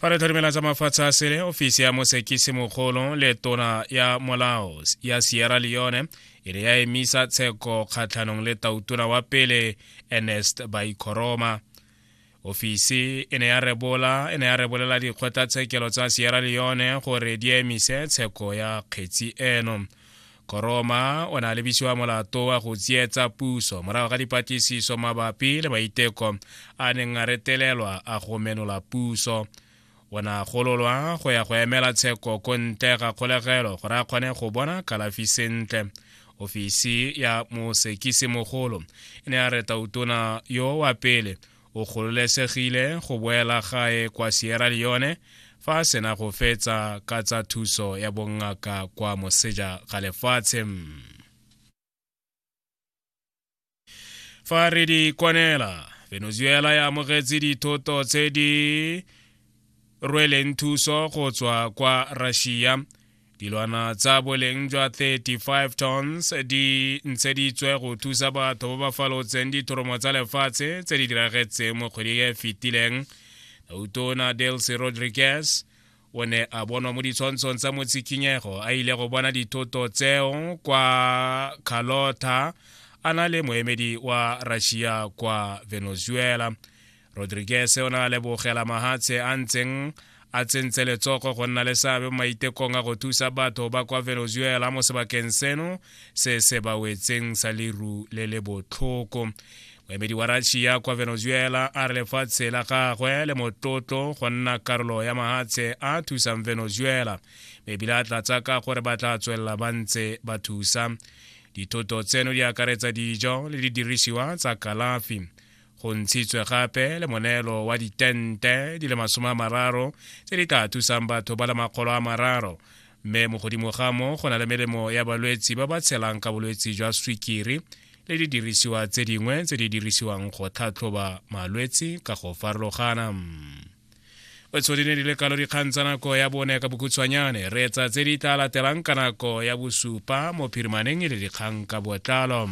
fa re tlhorimela tsa mafatshe a sele ofisi ya mosekisi mogolo le tona ya molao ya sierra leone e re ya emisa tsheko kgatlhanong le tautona wa pele ernest baikoroma ofisi e ne ya rebola e ne ya rebolela dikgotlatshekelo tsa sierra leone gore di emise tsheko ya kgetsi eno e koroma o na lebisiwa molato wa go tsietsa puso morago ga dipatlisiso mabapi le maiteko a neng a retelelwa a go menola puso o ne a gololwa go ya go emela tsheko ko ntle ga kgolegelo gore a kgone go bona kalafi sentle ofisi ya mosekisi mogolo e ne ya reta utona yo wa pele o gololesegile go boela gae kwa Sierra Leone fa a sena go fetsa ka tsa thuso ya bongaka kwa moseja ga lefatshe fa re di kwanela venezuela ya amogetse dithoto tse di rweleng thuso go tswa kwa russia dilwana tsa boleng jwa 35 tons di ntsheditswe go thusa batho ba ba falotseng dithoromo tsa lefatshe tse di diragetseng mo kgweding e fetileng utona delcy rodriguez o ne a bonwa mo ditshwantshong tsa motshikinyego a ile go bona dithoto tseo kwa carlota a na le moemedi wa russia kwa venezuela rodriguez o ne a lebogela mahatshe a ntseng a tsentse letsogo go nna le seabe mo maitekong a go thusa batho ba kwa venezuela mo sebakeng seno se se ba wetseng sa leru le le botlhoko moemedi wa russia kwa venezuela a re lefatshe la gagwe le motlotlo go nna karolo ya mahatshe a thusang venezuela ebile a tlatsa ka gore ba tla tswelela ba ntse ba thusa dithoto tseno di akaretsa dijo le didirisiwa tsa kalafi go ntshitswe gape le moneelo wa ditente di le masome a mararo tse di ka thusang batho ba le makgolo a mararo mme mo godimo ga mo go na le melemo ya balwetsi ba ba tshelang ka bolwetsi jwa swikiri le didirisiwa tse dingwe tse di dirisiwang go tlhatlhoba malwetsi ka go farologana tshodine di le kalo dikgang tsa nako ya bone ka bokhutshwanyane re etsa tse di tla latelang ka nako ya bosupa mo phirimaneng e le dikgang ka botlalo